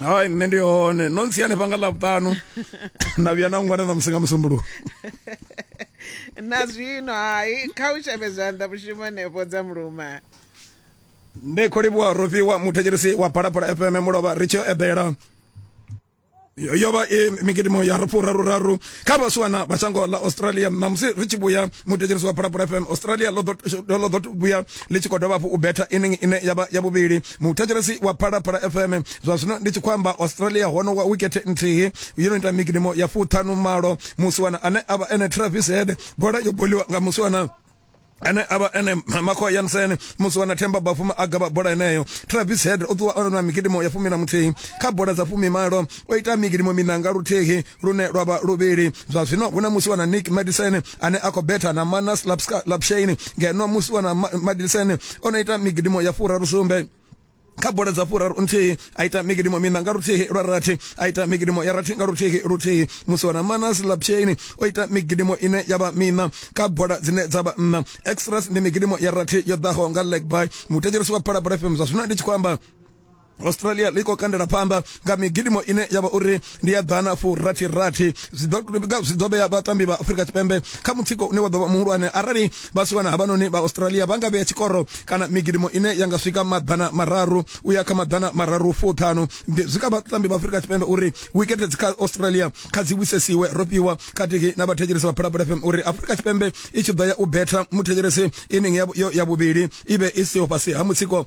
hai nṋe ndi hone no ntsi hanefha nga ḽavhuṱanu na vhuya na ngwana na musi nga musumbuluwo na zwino hai kha u shavhe zwanḓa mushumo hanefho dza muluma ndi khou livhuwa rofhiwa muthetshelisi wa phalaphala fm mulovha ri tshi eḓela yo vha i migidimo ya rufu raru raru kha vhasiwana vha shango ḽa australia ṋamusi ri tshi vhuya muthetshelisi wa phalaphala fm australia ḽo ḓo vhuya ḽi tshi khou dovha hafhu u betha inning ine ya vha ya vhuvhili muthetshelesi wa phalaphala fm zwa zwino ndi tshi khou amba australia hono wa wikete nthihi yo no ita migidimo ya fuṱhanu malo musiwana ane a vha ene travis head bola yo boliwa nga musiwana ane avha ene makho yansen musi wana themba bafuma a gavha bola eneyo travis head o ṱuwa ona mikidimo ya fumi na muthihi kha bola dza fumi malo o ita mikidimo minanga luthihi lune lwa vha luvhili zwa zwino hu na musiwa na nick madison ane a khou betha na manas lapshain ngeno musiwa na madison o no ita migidimo ya furaru sumbe kha bola dza furaru nthihi a ita migidimo mina nga luthihi lwa rathi a ita migidimo ya rathi nga luthihi luthihi musi wana manas lapshain o ita migidimo ine ya vha mina kha bola dzine dza vha nna extras ndi migidimo ya rathi yo ḓaho nga leg by muthetshirisi wa phalabora fm zwa zwino ndi tshi khou amba australia ḽi khou kandela phanḓa nga migidimo ine ya vha uri ndi ya ḓana fu rathi rathi zwi ḓo vhea vhatambi vha afurika tshipembe kha mutsiko une wa ḓo vha muhulwane arali vha si wana havhanoni vha australia vha nga vhea tshikoro kana migidimo ine ya nga swika maḓana mararu u ya kha maḓana mararu fuṱhanu zwi kha vhatambi vha afurika tshipembe uri wikete dzi kha australia kha dzi wisesiwe ro fhiwa khathihi na vhathetshelesi vha phalaphala fm uri afurika tshipembe i tshi ḓo ya u betha muthetshelesi ining ya vhuvhili i vhe i siho fhasi ha mutsiko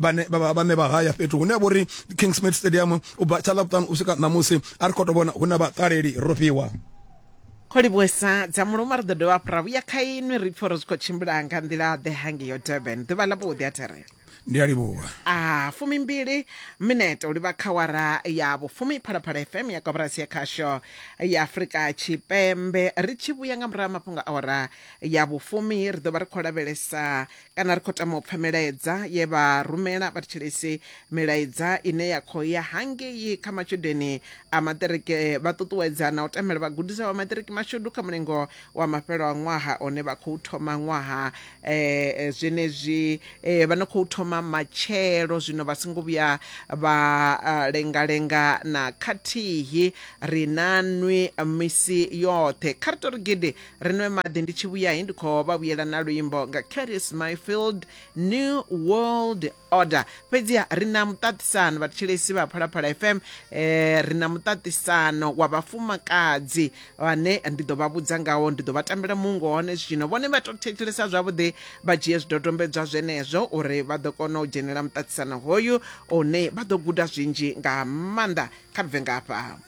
vhane vhane vha haya fhethu hune vho ri King Smith Stadium u bva tsha ḽavhuṱanu u swika ṋamusi a ri khou tou vhona hu na vhaṱaleli ro fhiwa kholivhuesa dza muluma ri ḓo dovha hafhu ra vhuya kha inwi ri pfhi uri zwi khou tshimbila nga nḓila ḓe hange yo durban ḓuvha ḽa vhuḓi a therela ndi a livhuwa a fumimbili minete u livha kha wara ya vhufumi phalaphala fm ya koporasi ya khasho ya afurika tshipembe ri tshi vhuya nga murahu mafhungo a wara ya vhufumi ri ḓo vha ri khou lavhelesa kana ri khou tama u pfa milaedza ye vha rumela vhathetshelesi milaedza ine ya khou ya hangei kha matshudeni a maṱiriki vha ṱuṱuwedza na u tamela vhagudiswa vha maṱiriki mashudu kha mulingo wa mafhelo a ṅwaha one vha khou thoma ṅwaha um zwenezwi um vha no khou thoma matshelo zwino vha songo vhuya vha lengalenga na khathihi ri na nwi misi yoṱhe kha ri to ri gidi ri nwe maḓi ndi tshi vhuya he ndi khou vha vhuyela na luimbo nga caris myfield new world order fhedziha ri na muṱaṱisano vhathetshelesi vha phalaphala fm eh, ri na muṱaṱisano wa vhafumakadzi vhane ndi ḓo vha vhudza ngawo ndi ḓo vha tambela mungo hone zwino vhone vha to thetshelesa zwavhuḓi vha dzhie zwidodombedzwa zwenezwo uri vha ḓo kona u dzhenela muṱaṱisano hoyu une vha ḓo guda zwinzhi nga maanḓa kha bve ngafha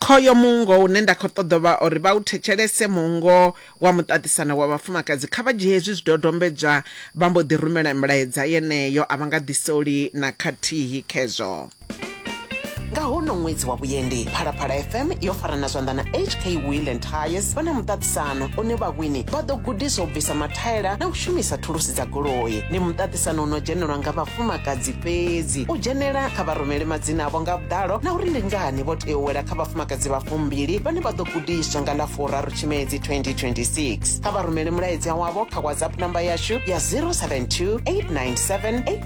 Khoyo muungo une nda khou ṱoḓa vha uri vha u thetshelese, muungo wa muṱaṱisano wa vhafumakadzi. Kha vha dzhie hezwi zwidodombedzwa vha mbo ḓi rumela mulaedza yeneyo, a vha nga ḓisoli na khathihi khezwo. Nga honoho ṅwedzi wa vhuendi, Phalaphala FM yo farana zwanḓa na HK Wheel and Tyres vha na muṱaṱisano. muṱaṱisano une vhawini vha ḓo gudiswa u bvisa mathaela na u shumisa thulusi dza goloi ndi muṱaṱisano u no dzhenelwa nga vhafumakadzi fhedzi u dzhenela kha vharumele madzina avho nga vhuḓalo na uri ndi ngani vho tea u wela kha vhafumakadzi vha fumbili vhane vha ḓo gudiswa nga ḽa furaru tshimedzi 2026 kha vharumele mulaedza wavho kha whatsapp namba yashu ya 072 897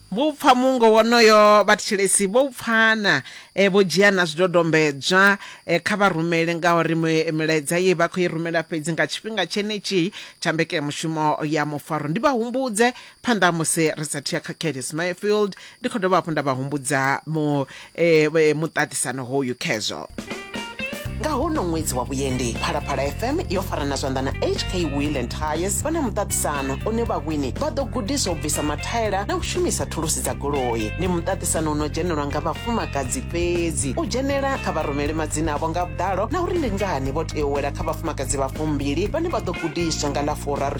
Vho u pfa muungo wonoyo, vhathetshelesi vho u pfa na vho dzhia na zwidodombedzwa. Kha vha rumele, ngauri milaedza ye vha khou i rumela fhedzi nga tshifhinga tshenetshi tsha mbekanyamushumo ya mufaro. Ndi vha humbudze, phanḓa ha musi ri sa athu ya kha Curtis Mayfield, ndi khou dovha hafhu nda vha humbudza mu eh, eh, muṱaṱisano hoyu khezwo nga hono ṅwedzi wa vhuendi phalaphala fm yo farana zwanḓa na hk wheel and tires vha na muṱaṱisano une vhawini vha ḓo gudiswa u bvisa mathaela na u shumisa thulusi dza goloi ndi muṱaṱisano uno dzhenelwa nga vhafumakadzi fhedzi u dzhenela kha vha rumele madzina avho nga vhuḓalo na uri ndi ngani vho tea u wela kha vhafumakadzi vha fumbili vhane vha ḓo gudiswa nga ḽa furaru